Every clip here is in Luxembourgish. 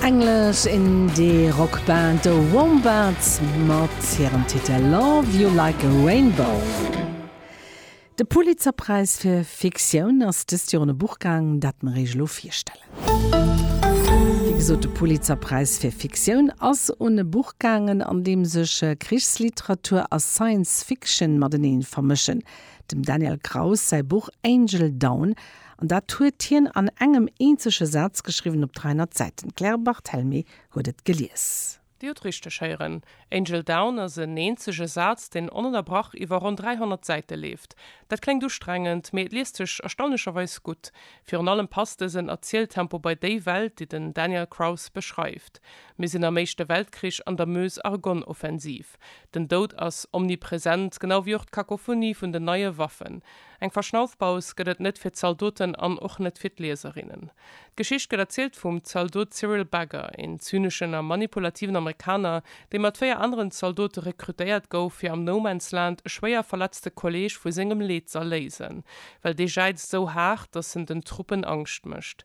English Indie Rock Band The Wombats mat hirem Titel Love You Like A Rainbow. De Pulitzerpräis fir Fiktioun ass dëst Joer un e Buch gaang, dat mer Iech elo virstellen. Wéi gesot, de Pulitzerpräis fir Fiktioun ass un e Buch gaangen, an deem sech Krichsliteratur a Science Fiction matenee vermëschen. Dem Daniel Kraus säi Buch Angel Down An dat huet hien an engem eenzege Saz geschriwwen op 300 Säiten. D'Claire Barthelmé huet et gelies. Dir hutt richteg héieren, Angel Down ass en eenzege Saz, deen onënnerbrach iwwer ronn 300 Säite leeft. Dat kléngt ustrengend, mee et liest sech erstaunlecherweis gutt. Virun allem passt dësen Erzieltempo bei déi Welt, déi den Daniel Kraus beschreift. Mir sinn am Éischte Weltkrich an der Meuse-Argonne-Offensiv. Den Doud ass omnipresent, genau wéi och d'Kakophonie vun den neie Waffen. Eng Verschnaufpaus gëtt et net fir d'Zaldoten an och net fir d'Lieserinnen. D'Geschicht gëtt erzielt vum Zaldot Cyril Bagger, een zyneschen a manipulativen Amerikaner, dee mat véier aneren Zaldote rekrutéiert gouf, fir am No-Man's-Land e schwéier verletzte Kolleeg vu sengem Leed z'erléisen, well dee jäizt esou haart, datt en den Truppen Angscht mécht.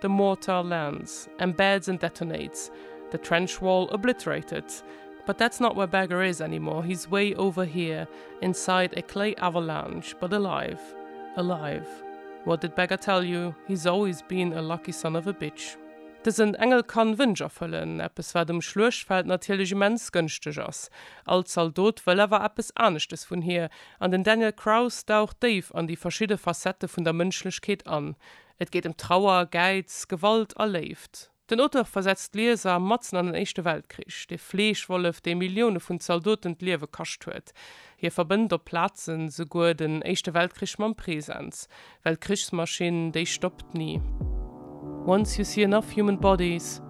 The mortar lands, embeds and detonates, the trench wall obliterated, but that's not where Bagger is anymore, he's way over here inside a clay avalanche, but alive, alive, what did Bagger tell you, he's always been a lucky son of a bitch. Dësen Engel kann Wënsch erfëllen, eppes wat um Schluechtfeld natierlech immens gënschteg ass. All Zaldot wëll awer eppes aneschtes vun hir, an den Daniel Kraus daucht déif an déi verschidde Facettë vun der Mënschlechkeet an. Et geet ëm Trauer, Gäiz, Gewalt a Léift. Den Auteur versetzt d'Lieser matzen an den Éischte Weltkrich. De Fleeschwollef, dee Millioune vun Zaldoten d'Liewe kascht huet. Hie verbënnt op Plazen souguer den Éischte Weltkrich mam Presens. Well d'Krichsmaschinn, déi stoppt ni. Once you see enough human bodies,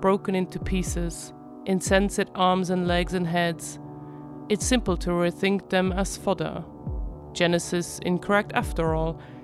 broken into pieces, insensate arms and legs and heads, it's simple to rethink them as fodder. Genesis incorrect after all.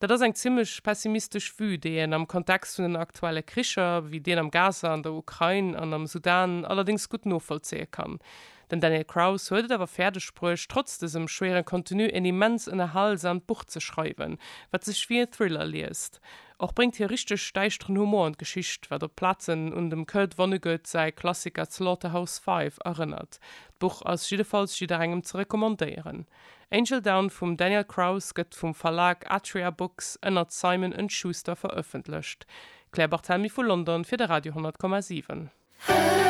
Dat ass eng zimlech pessimistesch Vue, déi een am Kontext vun den aktuelle Kricher, wéi deen am Gaza, an der Ukrain an am Sudan, allerdéngs gutt novollzéie kann. Den Daniel Kraus huet et awer fäerdeg bruecht, trotz dësem schwéieren Contenu een immens ënnerhalsamt Buch ze schreiwen, wat sech wéi e Thriller liest. Och bréngt hie richteg däischteren Humor an d'Geschicht, wat op Plazen un dem Kurt Vonnegut säi Klassiker Slaughterhouse-Five erënnert. D'Buch ass jiddefalls jidderengem ze recommandéieren. Angel Down vum Daniel Kraus gëtt vum Verlag Atria Books ënnert Simon and Schuster verëffentlecht. D'Claire Barthelmy vu London fir de Radio 100,7.